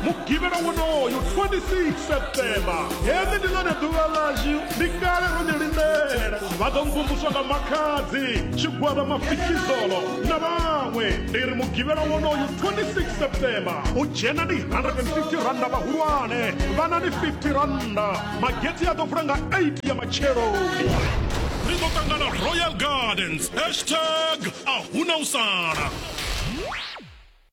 mugivhela wonoyo 26 septemba heḽi ndi ḽone ḓuvha ḽashu ndi kale ro ḽi lindela vha ḓo mvumvuswa nga makhadzi tshigwada mafikizolo na vhaṅwe ndi ri mugivhela wonoyo 26 septemba u dzhena ndi 150 randa vhahulwane vhana ndi 50 randa magetsi a ḓo vula nga 8 ya matsheloni ri ḓo ṱangana royal gardens hashtag a huna u sala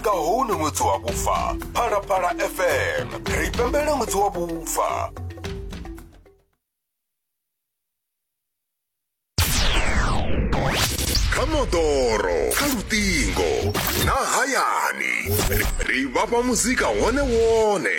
nga hone ṅwedzi wa vhufa phalaphala fm ri pembela ṅwedzi wa vhufa kha moḓoro kha luṱingo na hayani ri vhafha muzika wone wone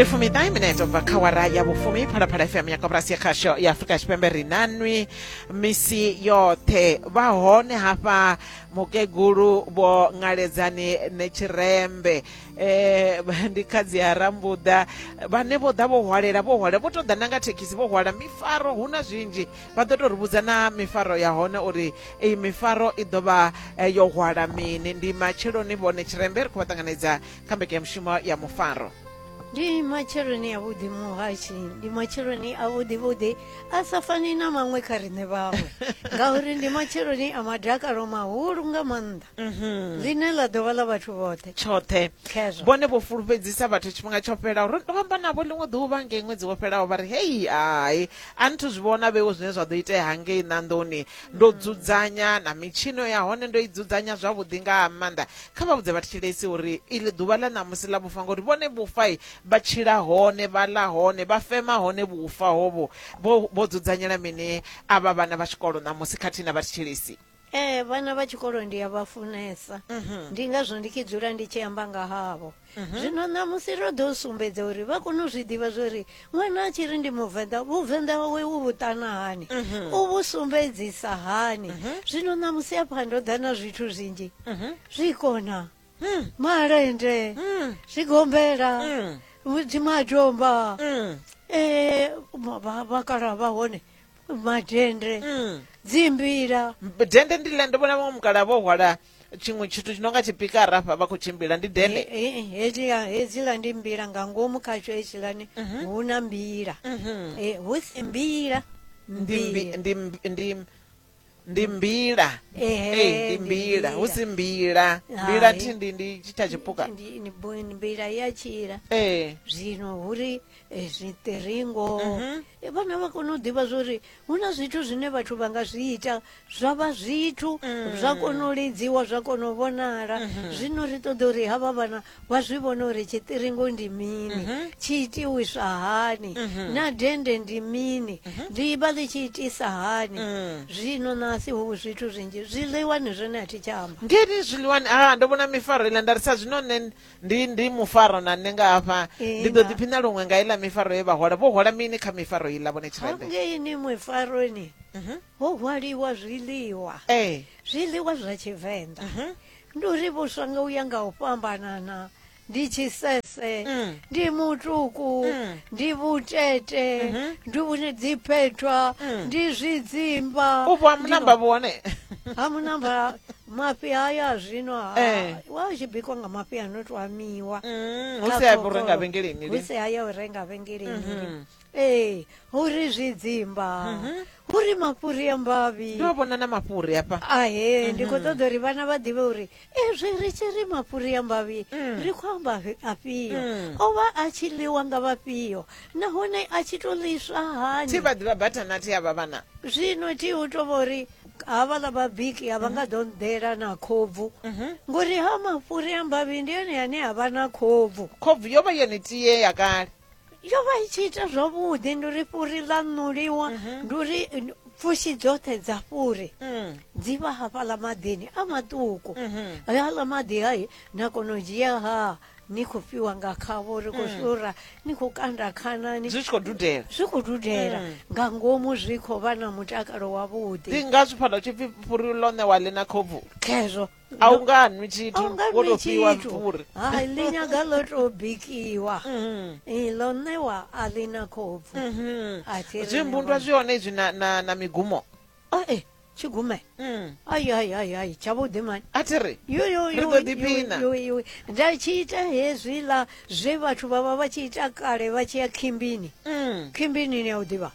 ndi fumiṱahe minete bva kha wara ya vhufumi phalaphala fm ya koporasi ya khasho ya afurika tshipembe ri nanwi misi yoṱhe vha hone hafha mukegulu vho ngaledzani netshirembe um ndi khadzi ya rambuḓa vhane vho ḓa vho hwalela vho hwalela vho tou ḓa na nga thekhisi vho hwala mifaro hu na zwinzhi vha ḓo tou ri vhudza na mifaro ya hone uri iyi mifaro i ḓo vha eh, yo hwala mini ndi matsheloni vhone tshirembe ri khou vha ṱanganedza kha mbekanyamushumo ya mufaro ndi matsheloni a vhuḓi muhashi ndi matsheloni a vhuḓi vhuḓi a sa fani na maṅwe kha riṋe vhaṅwe ngauri ndi matsheloni a madakalo mahulu nga maanḓa mhm. ḽine ḽa ḓovha ḽa vhathu vhoṱhe tshoṱhe vhone vho fulufhedzisa vhathu tshifhinga tsho fhelaho ro amba navho ḽiṅwe ḓuvha nge ṅwedzi wo fhelaho vha ri hei hai A nthu zwi vhona vhewo zwine zwa ḓo itea hangei ṋanḓoni. Ndo mm. dzudzanya na mitshino ya hone ndo i dzudzanya zwavhuḓi nga ha maanḓa. Kha vha vhudze vhatshilesi uri iḽi ḓuvha ḽa ṋamusi ḽa vhufa ngori vhone vhufa vha tshila hone vha ḽa hone vha fema hone vhufa hovho. Vho vho dzudzanyela mini avha vhana vha tshikolo ṋamusi khathihi na vhatshilesi? ee vhana vha tshikolo ndi a vha funesa mhm. ndi ngazwo ndi tshi dzula ndi tshi amba nga havho mhm. zwino ṋamusi ro ḓo sumbedza uri vha kone u zwi ḓivha zwo ri ṅwana a tshi ri ndi muvenḓa vhuvenḓa wawe u vhuṱana hani mhm. u vhu sumbedzisa hani zwino ṋamusi afha ndo ḓa na zwithu zwinzhi zwi kona hmm. malende hmm. zwigombela hmm. dzimadomba ee eh, vhakala vha hone madhende Mm. dzimbira Mb- dende ndile ndi vona vamwe mukala vo hwala tshiṅwe tshithu tshi no nga tshipikara hafha vha khou tshimbila ndi dende Eh, eh, eh, hedziya hedzila ndi mbila nga ngomu khatsho hedzilani hu na mbila Mhm. Eh, hu si mbila ndi mbi- mbila ndi mbi- ndi ndi mbila Ehe, Ei, ndi ndi mbila hu si mbila mbila Hai. thi ndi ndi tshitha tshipuka Ndi- ni bo- ni mbila ya tshila ee zwino huri eh, zwiṱiringo Mhm. Eh, vhana vha kona u ḓivha zwori hu na zwithu zwine vhathu vha nga zwi ita zwa vha zwithu zwa kona u lidziwa zwa kona u vhonala zwino ri ṱoḓa uri havha vhana wa zwi vhona uri tshiṱiringo ndi mini mhm. tshi itiwiswa hani mhm. na dende ndi mini mhm. ḽi vha ḽi tshi itisa hani mm. zwino nasi hu zwithu zwinzhi zwiḽiwani zwone a thi tsha amba ngeni zwiḽiwani a ah, ndo vhona mifaro iḽa nda ri sa zwino nṋe ndi ndi mufaro na nṋe nga hafha ndi ḓo ḓiphina luṅwe nga iḽa mifaro ye vha hola vho hola mini kha mifaro iḽa vhone tshirende ngeini mifaroni ho hwaliwa zwiḽiwa ee zwiḽiwa zwa tshivenḓa ndi uri vhuswa nga uya nga u fhambanana ndi tshisese mm. ndi mutuku mm. ndi vhutete mm -hmm. ndi vhune dziphethwa mm. ndi zwidzimba upo hamunamba vhone hamunamba mafhi haya zwino eh. wa tshi bikwa nga mafhi ano to amiwa mm, hu si haya u renga vhengeleni hu si haya u renga vhengeleni mm -hmm. ee hu ri zwidzimba hu ri mafhuri a mbavhi ndo vhona na mafhuri hafha ahe ndi khou ṱoḓa uri vhana vha ḓivhe uri ezwi ri tshi ri mafhuri a mbavhi ri khou amba fi- afhio o vha a tshi ḽiwa nga vhafhio nahone a tshi tou ḽiswa hani thi vha ḓivha bathanathi havha vhana zwino thi u tou vha uri havhaḽa vhabiki a vha nga ḓo nḓela na khobvu ngori ha mafhuri a mbavhi ndi ene ane a vha na khobvu khobvu yo vha yone tie ya kale yo vha i tshi ita zwavhuḓi ndi uri fhuri ḽa ṋuliwa mhm. ndi uri pfushi dzoṱhe dza fhuri mm. dzi vha hafhaḽa maḓini a maṱuku mhm. hayaḽa maḓi hayi na kona u dzhia ha ni khou fhiwa nga khavho ri khou mm. shura ni khou kanda khanani zwi khou dudela zwi khou dudela mm. nga ngomu zwi khou vha na mutakalo wavhuḓi ndi ngazwo fhano tshipfi fhuri ḽo ṋewa ḽi na khobvu khezwo a u nga nwi tshithu A u nga wo nwi tou fhiwa tshithu. mvuri hai ḽi nyaga ḽo tou bikiwa Mhm. Eh, ḽo ṋewa a ḽi na khopfu Mhm. a thi ri zwimbundwa ṋewa. zwi hone izwi na, na, na migumo Ah, eh, tshigume mm. ai ai ai ai tshavhuḓi mani a thi ri Yo, yo, Ri yo, ḓo yo, ḓipina. yo, yo. nda tshi ita hezwiḽa zwe vhathu vha vha vha tshi ita kale vha tshi ya khimbini mm. khimbini ni ya u ḓivha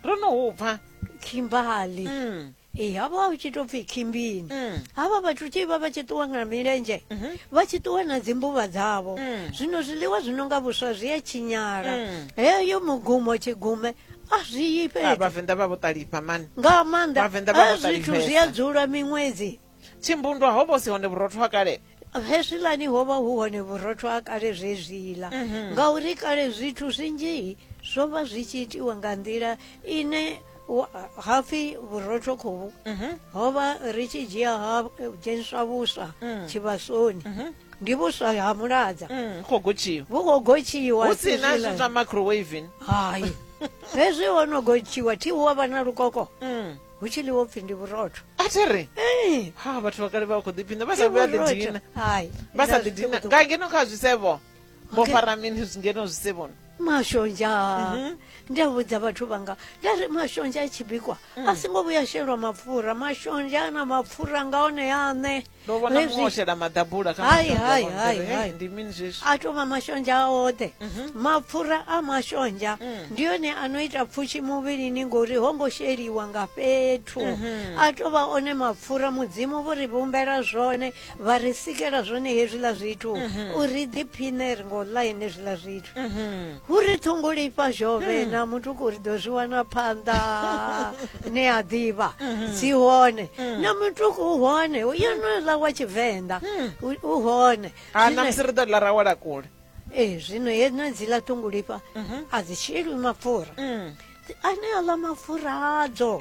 ro no hupfa khimbali mm. Ee, havho a hu tshi tou pfhi khimbini havha vhathu tshi vha vha tshi ṱuwa nga milenzhe vha tshi ṱuwa na dzimbuvha dzavho zwino zwiḽiwa zwi no nga vhuswa zwi a tshinyala heyo mugumo tshigume a zwi yi Ah, fhethu vhavenḓa vha vho ṱalifha mani nga maanḓa Vhavenḓa vha a vho zwithu zwi a ṱalifhesa. dzula miṅwedzi tshimbundwa ho vho si hone vhurotho ha kale hezwilani ho vha hu hone vhurotho ha kale zwezwila mhm. ngauri kale zwithu zwinzhi zwo vha zwi tshi itiwa nga nḓila ine hapfi vhurotho khovhu mhm. ho vha ri tshi dzhia ha dzheniswa vhuswa mm. tshivhasoni mhm. ndi vhuswa ha muladza mm, vhu khou gotshiwa hu si na zwa microwaving hai hezwi ho no gotshiwa thi hu wa vha na lukoko mm. hu tshi ḽiwo pfhi ndi vhurotho a thi ri eh. ha vhathu vha kale vha khou ḓiphina vha sa vhuya ḓidina vha sa ḓidina nga ngeno kha zwisevho vho fara mini ngeno zwisevhoni mashonzha mhm. ndi a vhudza vhathu vhanga nda ri mashonzha a tshi bikwa a mm. singo vhuya shelwa mapfura mashonzha a na mapfura nga one aṋe ndo vhona Hezwi- muṅwe o shela maḓabula kha Hai, mashonzha hai, wa hai, mpfhiri. hai. Hey, ndi mini zwezwi a tou vha mashonzha a oṱhe Mhm. mapfura a mashonzha Mm. ndi one a no ita pfushi muvhilini ngori ho ngo sheliwa nga fhethu Mhm. a tou vha one mapfura mudzimu vho ri vhumbela zwone vha ri sikela zwone hezwiḽa zwithu Mhm. uri ḓiphiṋe ri ngo ḽa ene zwiḽa zwithu Mhm. Hu ri ṱhongolifha zhovhe na mutuku ri ḓo zwi wana phanḓa ni a ḓivha dzi hone na mutuku u hone yo no ḽa wa tshivenḓa u hone ha na musi ri ḓo ḽa ra wala kule ee zwino yedzo dziḽa ṱhongolifha a dzi sheli mapfura ane a ḽa mapfura adzo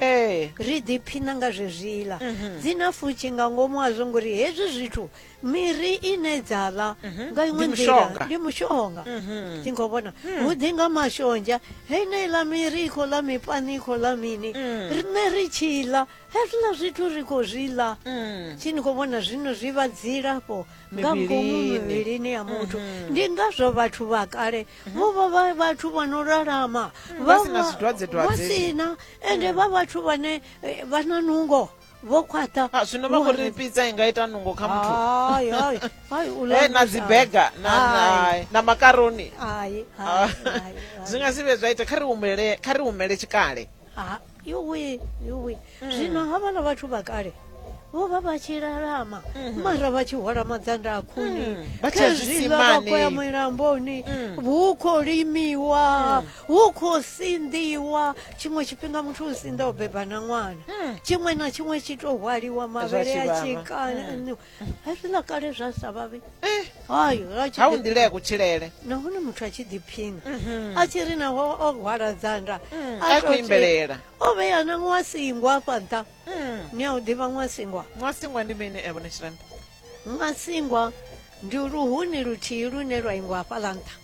ri ḓiphina nga zwezwiḽa dzi na fushi nga ngomu a zwo ngori hezwi zwithu miri ine dza ḽa nga iṅwe Ndi nḓila mushonga. ndi mushonga ndi khou vhona hu ḓi nga mashonzha heneiḽa miri i khou ḽa mipani i khou ḽa mini riṋe ri tshi ḽa hezwiḽa zwithu ri khou zwi ḽa tshi ni khou vhona zwino zwi vha dzilafho nga ngomu Mivhilini. mivhilini ya muthu ndi ngazwo vhathu vha kale vho vha vha vhathu vha no lalama Vha si na vha- zwidzwadzedzwadze. vha si na ende vha vhathu vhane eh, vha na nungo vho khwaṱha Ah, zwino vha khou ri pizza i nga ita nungo kha muthu hayi hayi hayi u Eh, na dzibega na, Hayi. na, na makaroni hayi Ah, hayi hayi, zwi hayi. nga si vhe zwa ita kha ri humele kha ri humele tshikale Ah, yuwi yuwi Mm. zwino havhala vhathu vha kale vho vha vha tshi lalama mara vha tshi hwala madzanda a khuni Mhm. Mm. Vha tshi ya khezwiḽa vha khou ya zwisimani. milamboni Mm. hu khou limiwa hu khou sinḓiwa tshiṅwe tshifhinga muthu u sinḓa o beba na ṅwana hmm. tshiṅwe na tshiṅwe tshi tou hwaliwa mavhele a tshikana hmm. hezwiḽa kale zwa sa vhavhi eh. ha u nḓila ya kutshilele nahone muthu a tshi ḓiphina mhm. a tshi ri naho o hwala dzanda hmm. a khou imbelela o vhea na ṅwasingwa afha nṱha ni a u ḓivha ṅwasingwa ṅwasingwa ndi mini evo neshiranda masingwa ndi luhuni luthihi lune lwa ingwa hafhaḽa nṱha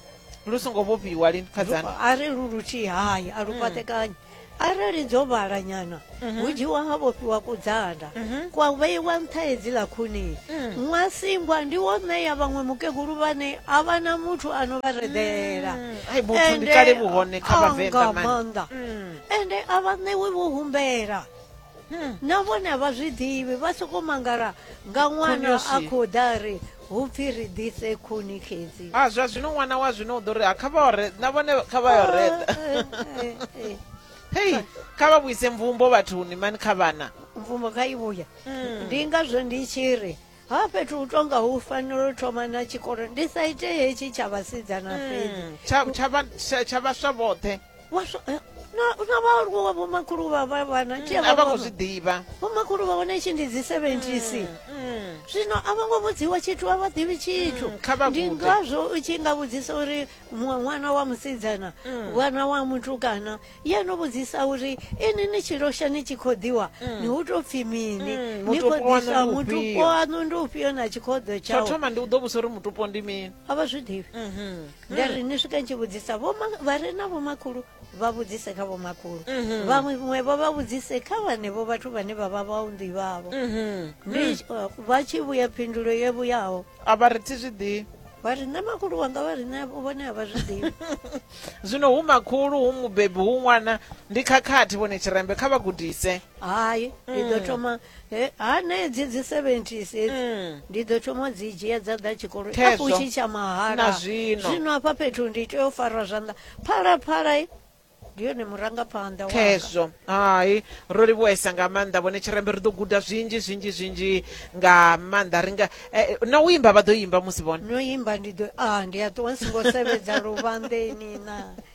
lu songo vhofhiwa lini khadzana Lu- a ri lu luthihi hayi a lu fhaṱekanyi arali dzo vhala nyana hu dzhiwa ha vhofhiwa kudzanda kwa vheiwa nṱha hedziḽa khuni ṅwasingwa ndi wo ṋeya vhaṅwe mukegulu vhane a vha na muthu a no vha reḓela ai vhuthu ndi kale vhuhone kha vhavenḓa mani maanḓa ende a vha ṋewi vho humbela hmm. na vhone vha zwi ḓivhi vha sokou mangala nga ṅwana a khou ḓa ri hu pfi ri ḓise khuni xedzi a ah, zwa zwino ṅwana wa zwino u ḓo ri a ah, kha vha ore na vhone kha vha yo ah, reda eh, eh, eh, hei kha vha vhuise mvumbo vhathuni mani kha vhana mvumbo kha i vhuya hmm. ndi ngazwo ndi tshi ri ha fhethu u tonga hu fanela u thoma na tshikolo ndi sa ite hetshi tsha vhasidzana hmm, fhedzi tsha vhaswa vhoṱhe Waswa, eh, na, na vhaaluwa wa vhomakhulu vha vha vhana tshi a vha khou zwi ḓivha vhomakhulu vha hone tshi ndi dzi 70 zwino a vho ngo vhudziwa tshithu a vha ḓivhi tshithu Mm, kha vha ndi gude. ngazwo u tshi nga vhudzisa uri muṅwe ṅwana wa musidzana Mm. ṅwana wa mutukana ye no vhudzisa uri ini ni tshi losha ni tshi khou ḓiwa ni hu tou pfi mini Mm, ni khou mutupo waṋu ḓisa ndi mutupo ufhio? waṋu ndi ufhio na tshikhoḓo tsho tshau thoma ndi u ḓo vhusa uri mutupo ndi mini a vha zwi ḓivhi Mhm. nga ri ni swika tshi vhudzisa vha re na vhomakhulu vha vhudzise kha vhomakhulu mhm. vhaṅwe vho vha vhudzise kha vhanevho vhathu vhane vha vha vhaunḓi vhavho mhm. mm. uh, vha tshi vhuya phindulo ye vhuyaho a vha ri thi zwi ḓivhi vha ri nṋe makhulu wanga vha ri nṋe vhone a vha zwi ḓivhi zwino hu makhulu hu mubebi hu ṅwana ndi khakhathi vhone tshirembe kha vha gudise hai ndi ḓo mm. thoma He- hanedzi dzi 70s hedzi Mm. ndi ḓo thoma u dzi dzhia dza ḓa tshikoloni Khezwo. afho tshi tsha mahala Na zwino. zwino hafha fhethu ndi tea u farwa zwanḓa phalaphala i, ndi yone murangaphanḓa wanga. khezwo hai ro livhuwesa nga maanḓa vhone tshirembe ri ḓo guda zwinzhi zwinzhi zwinzhi nga maanḓa ri nga eh, na u imba vha ḓo imba musi vhone no imba ndi ḓo a ndi a ṱuwa nsingo sevhedza luvhanḓeni na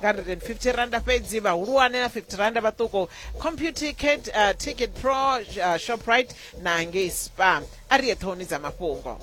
nga 150 randa fhedzi vhahulwane na 50 randa vhaṱuku computicket uh, ticket pro uh, shoprite na ngei spa a ri ye ṱhohoni dza mafhungo